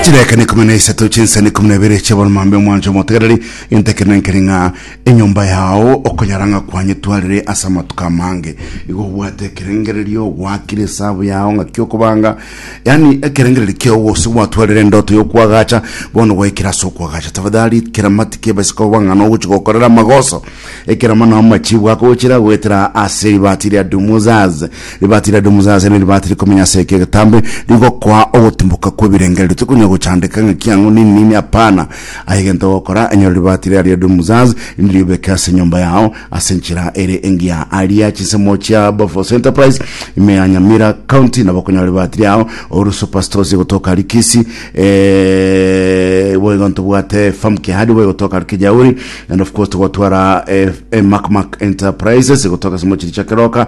Chirekane ikomi na isato chinsani ikomi na ibere chiaboromambe omwancho omotegereri gento ekero nankeri ng'a enyomba yao okonyara ng'a kwanyetwarire ase amatuko amange igo obwate ekerengererio ogwakire esabu yao ng'a kiokobanga yani ekerengererio kiao gose gwatwarire endoto yokwagacha bono gwaikire ase okwagacha tafadhali keramati kiebesika oba ng'ana ogochi gokorera amagoso ekeramano amachibu akogochira goetera ase ribati ria dumuzaz Ribaati riaito Moses ne ribaati rikomi na ase eke egetambe rigokoa ogotimboka kw'ebirengererio. Tikonya gochandeka ng'a kiang'u nini nini, apana, aye egento ogokora, enyora ribaati ria riaito Moses, erinde riobeke ase enyomba yao ase enchera ere engiya. Aria chinsemo chia Bofos Enterprise, ime ya Nyamira County, nabo okonyora ribaati riao oru Super Stores egotoka aria Kisii, eh, boigo ntobwate Farm Kihadi boigo egotoka aria Kijauri, and of course togotwara eh, eh, Mac Mac Enterprises egotoka ase omochie Richakeroka,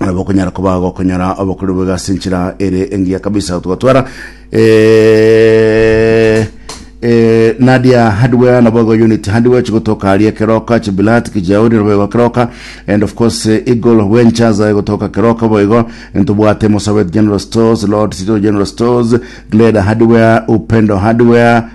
nabo okonyara koba gokonyora obokori boigo ase enchera ere engiya kabisa gotwara eh, eh, nadia hardware nabo igo unit hardware chigotoka aria keroka chibilat kijauri nabo igo keroka and of course eh, eagle ventures aye gotoka keroka bo igo ntobwate mosabet general stores lord city general stores gleda hardware upendo hardware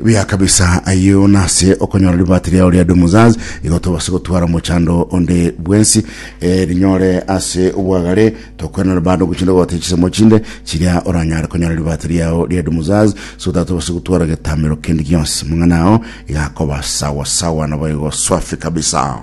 buya kabisa ayio nase okonyora libati riao ria dumuzaz igo tobase gotwara mochando onde bwensi eh, rinyore ase obwagare tokwenera bando gochinde gote chisemo chinde chiria oranyare konyora libati riao ria dumuzaz so that tobase gotwara getamero kende gionsi mang'ana ao igakoba sawa sawa nabo igo swafi kabisa